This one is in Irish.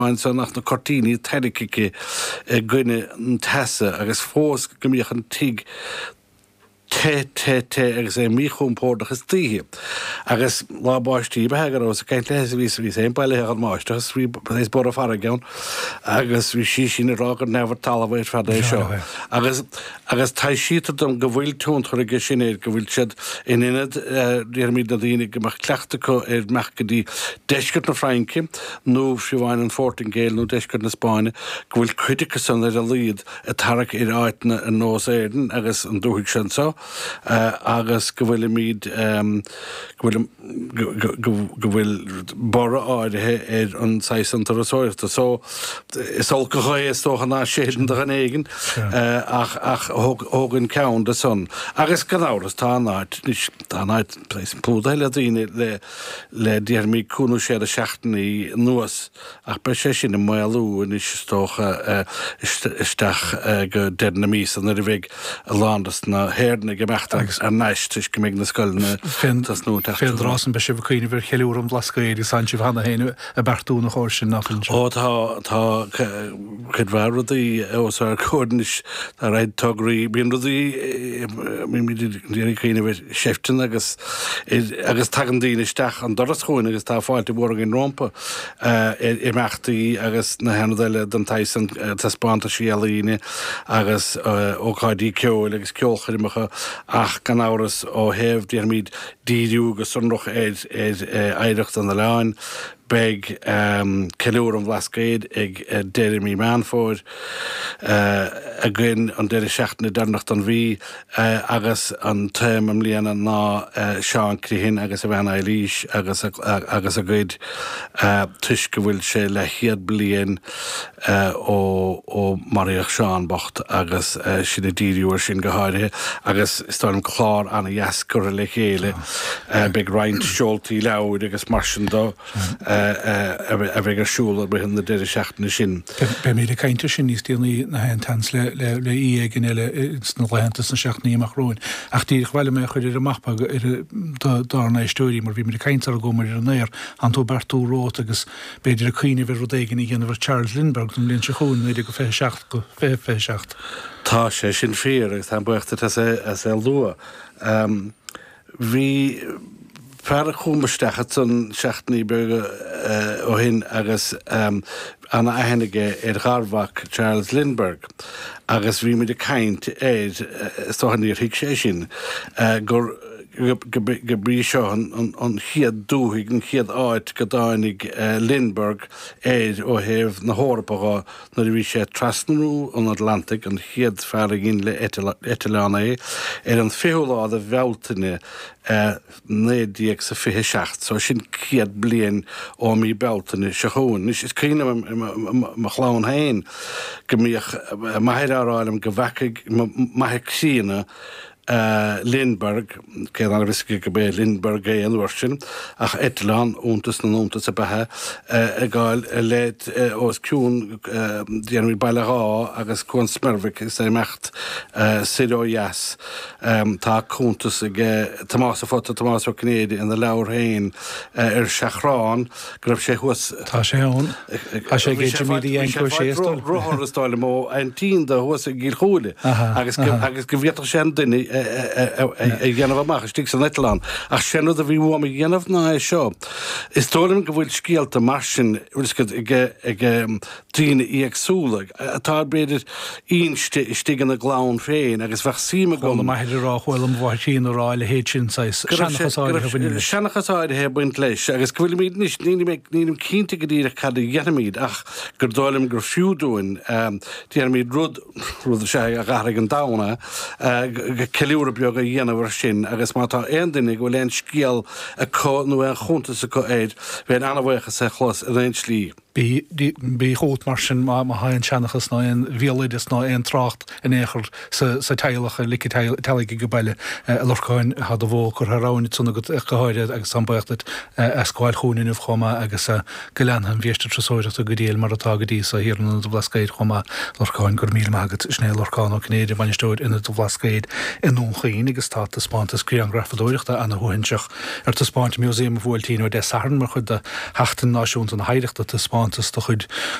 Ansin ach na cuirtíní tarraicthe i gcoinne an teasa agus fós go mbíodh an tigh te, te, te agus é míchompórdach istoíche. Agus lá báistí ba ea go rabhas ag caint léi is bhíos, bhíos fhéin bailithe den mbáisteach is bhí is borradh farraige ann agus bhí sí sin ag rá gur neamh ar talamh ar fad é seo. Agus, agus taibhsítear dom go bhfuil tionchar aige sin air, go bhfuil siad in ionad, déarfaimid, na daoine go mbeadh cleachtadh acu ar imeacht go dtí deisceart na Fraince nó fiú amháin an Phortaingéil nó deisceart na Spáinne, go bhfuil cuid acu san ar a laghad ag tarrac ar áiteanna ar nós Éirinn agus an dúthaigh seo anseo agus go bhfuilimid, go bhfuil an. go bhfuil borradh áirithe ar an saghas san turasóireachta. So, is olc an ghaoth, is dócha, ná séideann do dhuine éigin ach thógainn ceann de san. Agus gan amhras, tá an áit, anois, tá an áit plódaithe le daoine le le déarfaimid cúig nó sé de sheachtainí anuas ach beidh sé sin ag maolú anois is dócha isteach go deireadh na míosa nuair a bheidh a lán dos na hÉireannaigh ag imeacht thar n-ais toisc go mbeidh na scoileanna ag tosnú an tseachtain seo. Fén dtráth san beidh sibh ag cuimhneamh ar cheiliúradh an Bhlascaoid agus tánn sibh cheana féin ag beartú ina chomhair sin, nach bhfuil sin? Ó tá, tá cuid mhaith rudaí os ár gcomhair anois, tá a fhios agat tograí, bíonn rudaí, bímid ag iarraidh cuimhneamh ar, sheifteanna agus agus tagann daoine isteach an doras chugainn agus tá fáilte mhór againn rompu ar imeachtaí agus na haonaid eile den tsaghas sin, taispeántaisí ealaíne agus ócáidí ceoil agus ceolchoirmeacha ach gan amhras ó thaobh, déarfaimid, díriú go sonrach ar oidhreacht an oileáin. Beidh Ceiliúradh an Bhlascaoid ag deireadh mí Meán Fómhair againn, an deireadh seachtaine deireanach den mhí, agus an téama i mbliana ná Seán Criomhthain agus a bhean Eibhlís agus a gcuid toisc go bhfuil sé leathchéad bliain, ó maraíodh Seán bocht agus sinn ag díriú air sin go háirithe agus is dóigh liom clár an-dheas curtha le chéile. Beidh roinnt seoltaí leabhair agus mar sin de a bheidh ar siúl i rith na deireadh seachtaine sin. Beimid ag caint air sin níos déanaí gach aon tseans le aoi éigin eile sna laethanta sna seachtainí amach romhainn ach díreach ba mhaith liom é a chur ar an mapa do dár n-éisteoirí mar bhíomar ag caint sarar chuamar ar an aer, tánn tú ag beartú romhat agus B'fhéidir ag cuimhneamh ar rud éigin a dhéanamh ar Charles Lindbergh don bhliain seo chugainn, 19-27 go 20-27. Tá sé sin fíor agus táim buíoch duit as é as é a lua. Bhí fear chugham isteach ansan seachtainí beaga ó shin agus ana-aithne aige ar gharmhac Charles Lindbergh agus bhí muid ag caint air, is dócha níor thuig sé sin, gur, gurb í seo an chéad dúthaigh, an chéad áit go dtáinig Lindbergh air ó thaobh na hEorpa dho nuair a bhí sé ag trasnú an Atlantaigh, an chéad fear a dhein le heitleán é, ar an 20ú lá de Bhealtaine 1927. So sin céad bliain ó mí Bealtaine seo chugainn. Anois is cuimhin liom i mo chlann féin go mbíodh m'athair á rá liom go bhfeacaigh m'athair críonna Lindbergh, cé ná raibh a fhios aige gurb é Lindbergh é an uair sin ach eitleán iontas na n-iontas ab ea é ag gabháil i leith os cionn dhéanamh Baile Dháith agus Cuan Smeirbhic is ag imeacht soir ó dheas, tá cuntas ag Tomás, a phota Tomás Ó Cinnéide ina leabhar féin Ar Seachrán, Ach go raibh sé thuas. Tá sé ann. Tá sé ag Jimí de Dhéantóir Séastal. Rothar is dóigh liom ó an tienda thuas i gCill Chúile agus go bhféadfadh sé an duine a dhéanamh amach istigh san eitleán. Ach sé an rud a bhí uaim a dhéanamh ná é seo. Is dóigh liom go bhfuil scéalta mar sin, bhfuil scéalta ag daoine éagsúla atá b'fhéidir inste istigh ina gclann féin agus bheadh suim agam. Chuala m'athair á rá, chuala mo mháthair féin á rá a leithéid sin saghas, go raibh sé, seanchas go áirithe a raibh bhaineann sé, leis. seanchas áirithe ag baint leis agus go bhfuilimid anois, nílim ag, nílim cinnte go díreach cad a dhéanfaimid ach gur dóigh liom gur fiú dúinn, déarfaimid rud, rud is ea a dh'athraigh an domhan a, a, ceiliúradh beag a dhéanamh ar sin agus má tá aon duine go bhfuil aon scéal acu nó aon chuntas acu air, bheinn an-bhuíoch as é a chlos in aon tslí. Bí chugat, mar sin, má tá aon seanchas ná aon bhéaloideas ná aon trácht in aon chor sa teaghlach a ligfidh teaghlaigh age baile a Lorcáin, tá do bhó curtha thar abhainn ansan agat go háirithe agus táim baoch díot as gabháil chugainn inniu chomh maith agus go leanfaidh an bhiaiste turasóireachta go diail mar atá go dtí so thiar in Ionad an Bhlascaoid chomh maith. Lorcáin, Go raibh míle maith agat. Sin é Lorcán Ó Cinnéide, Bainisteoir Ionad an Bhlascaoid i nDún Chaoin agus tá taispeántas grianghrafadóireachta ana shuaithinseach, Ar taispeáint i Músaem an Bhuailtín ó Dé Sathairn mar chuid de Sheachtain Náisiúnta na hOidhreachta, taispeántas de chuid